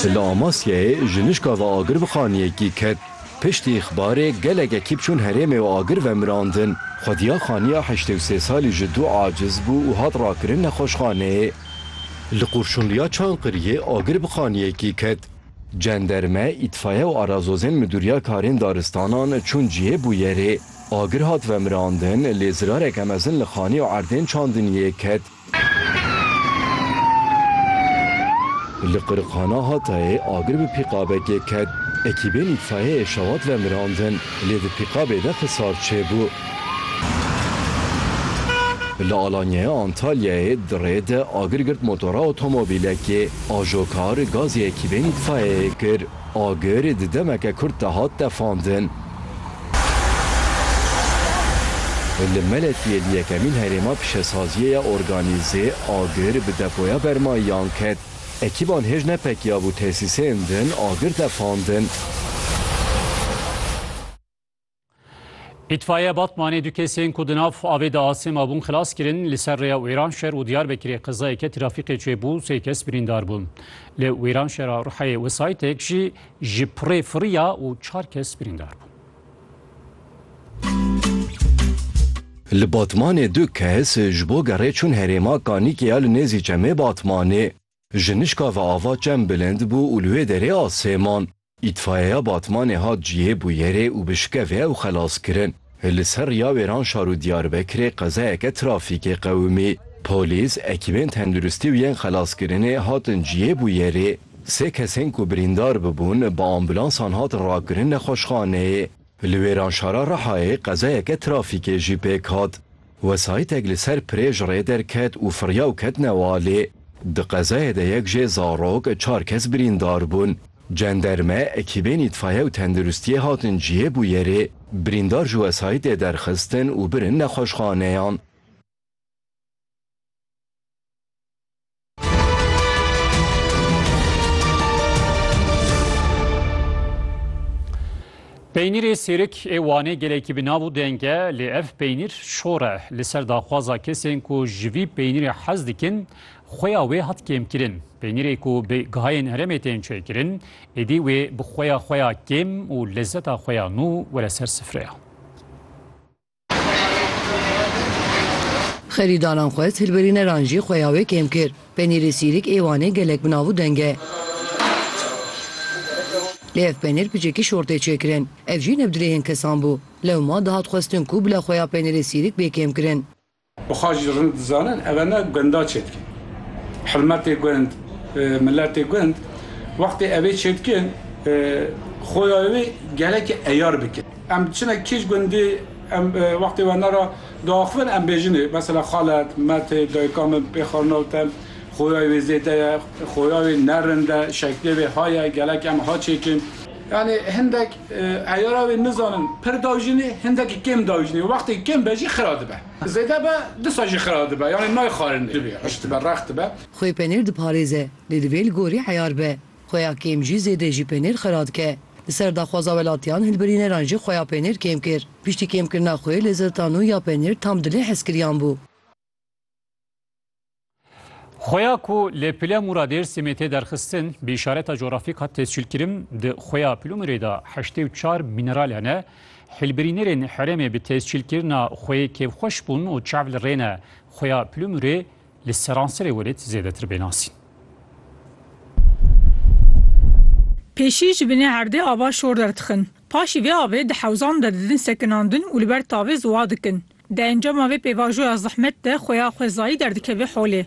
Li Amasyayê jinişka ve agir bi xaniyekî ket. Piştî îxbarê gelek ekîb çûn herêmê û agir ve mirandin. Xwediya xaniya heştê û sê salî ji dû aciz bû û hat rakirin nexweşxaneyê. Li Qurşunliya Çankiriyê agir bi xaniyekî ket. Cenderme, îtfaye û arazozên Midûriya Karên Daristanan çûn cihê bûyerê. Agir hat vemirandin lê zirareke mezin li xaniya erdên çandiniyê ket. Li Qiriqana Hatayê agir bi pîqabekê ket, ekîbên îtfaiyeyê şewat ve mirandin, lê di pîqabê de xisar çêbû. Li Alanyaya Antalyayê di rê de agir girt motora otomobîlekê, ajokar gazê ekîbên îtfaiyeyê kir. Agir di demeke kurt de hat tefandin. Li Meletiyê li yekemîn herêma pişesaziyê ya organîzê agir bi depoya bermayiyan ket. Ekîban hêj nepekiyabû tesîsên din agir tefandin. Îtfaiyeya Batmanê du kesên ku di nav avê de asê mabûn xilas kirin. Li ser rêya Wêranşer û Diyarbekirê qezayeke trafîqê çêbû sê kes birîndar bûn. Li Wêranşera Ruheyê wesayîtek jî ji pirê firiya û çar kes birîndar bûn. Li Batmanê du kes ji bo gerê çûn herêma Kanîkê ya li nêzî Çemê Batmanê Jinişka ve ava çem bilind bû û li wê derê a Sêman. Îtfayeya Batmanê hat cihê bûyerê û bi şikevê ew xelas kirin. Li ser riya wêran şar û Diyarbekirê qezayeke trafîkê qewimî. Polîs, ekîbên tenduristî û yên xelaskirinê hatin cihê bûyerê. Sê kesên ku birîndar bibûn bi ambulansan hatin rakirin nexweşxaneyê. Li Wêranşara Rihayê qezayeke trafîkê jî pêk hat. Wesayîtek li ser pirê ji rê derket û firiya û ket newalê. Di qezayê de yek jê zarok, çar kes birîndar bûn. Cenderme, ekîbên îtfaiye û tenduristiyê hatin cihê bûyerê, birîndar ji wesayîtê derxistin û birin nexweşxaneyan. Peynîrê sêrik ê Wanê gelekî bi nav û deng e lê ev peynîr şor e. Li ser daxwaza kesên ku ji vî peynîrê hez dikin, xuya wê hat kêmkirin. Peynîrê ku bi gihayên herêmê tên çêkirin, êdî wê bi xuya xwe ya kêm û lezeta xwe ya nû were ser sifreya. Xerîdaran xwest hilbirîneran jî xuya wê kêm kir. Penîrê sîrîk ê Wanê gelek bi nav û deng e. Lê ev penîr piçekî şort tê çêkirin. Ev jî ne bi dilê hên kesan bû. Lewma dihat xwestin ku bila xuya penîrê sîrîk bê kêmkirin. Xwe jî rind dizanin, ev ne gunda çêdikin. Hilmetê gund, miletê gund wextê ev ê çêdikin, xoya wê gelekî eyar bikin. Em diçine kîj gundî, em wextê we ne re diaxivin, em bêjinê, mesela xalet, metê, dayika min pê xarnawt e, xoya wê zêde ye, xoya wê ne rind e, şeklê wê ha ye, gelek em ha çêkin. Yanî hindek eyara wê nizanin pir dajînê, hindekî kêm dajînê û wextê kêm be jî xira dibe. Zêde be disa jî xira dibe yanî nayxarîne. Divê hişk dibe, rex dibe. Xwê penêr diparêze lê divê li gorî eyar be. Xwe ya kêm jî zêde jî penêr xira dike. Li ser daxwaza welatiyan hilbirîneran jî xwe ya penêr kêm kir. Piştî kêmkirina xwê li ziltan û ya penêr tam dilê hezkiriyan bû. Xoya ku li pile Mûra Dêrsimê tê derxistin bi îşareta coğrafîk hat tescîlkirin di xoya Pilumirê de heştê û çar mîneral hene. Hilbirînerên herêmê bi tescîlkirina xoyê kêfxweş bûn û çav li rê ne xoya Pilumirê li seranserê welêt zêdetir bê nasîn. Pêşî ji binê erdê ava şor derdixin. Paşî vê avê di hewzan de didin sekinandin û li ber tavê ziwa dikin. Di encama vê pêvajoya zehmet de xuya xwezayî derdikeve holê.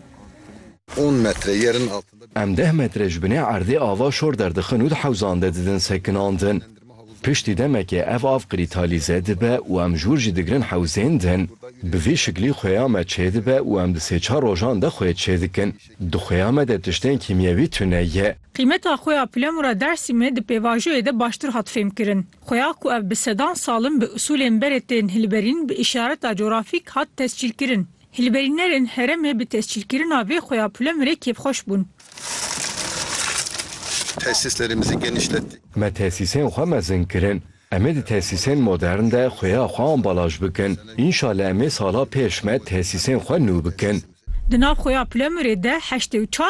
On metre yerin altında bir. Em deh metre ji binê erdê ava şor derdixin û di hewzan de didin sekinandin. Piştî demekê ev av qirîtalîze dibe û em jûr jî digirin hewzên din. Bi vî şiklî xuya me çêdibe û em di sê çar rojan de xuyê çêdikin. Di xuya me de tiştên kîmyewî tune ye. Qîmeta xuya Pilemura Dersîmê di pêvajoyê de baştir hat fêmkirin. Xuya ku ev bi sedan salin bi usûlên berê tên hilberîn bi îşareta cografîk hat tescîlkirin. Hilberînerên herêmê bi tescîlkirina vê xuya Pulemirê kêfxweş bûn. Tesîslerimizi genişlettik. Me tesîsên xwe mezin kirin. Em ê di tesîsên modern de xuya xwe ambalaj bikin. Înşallah em ê sala pêş me tesîsên xwe nû bikin. Di nav xuya Pulemirê de heştê û çar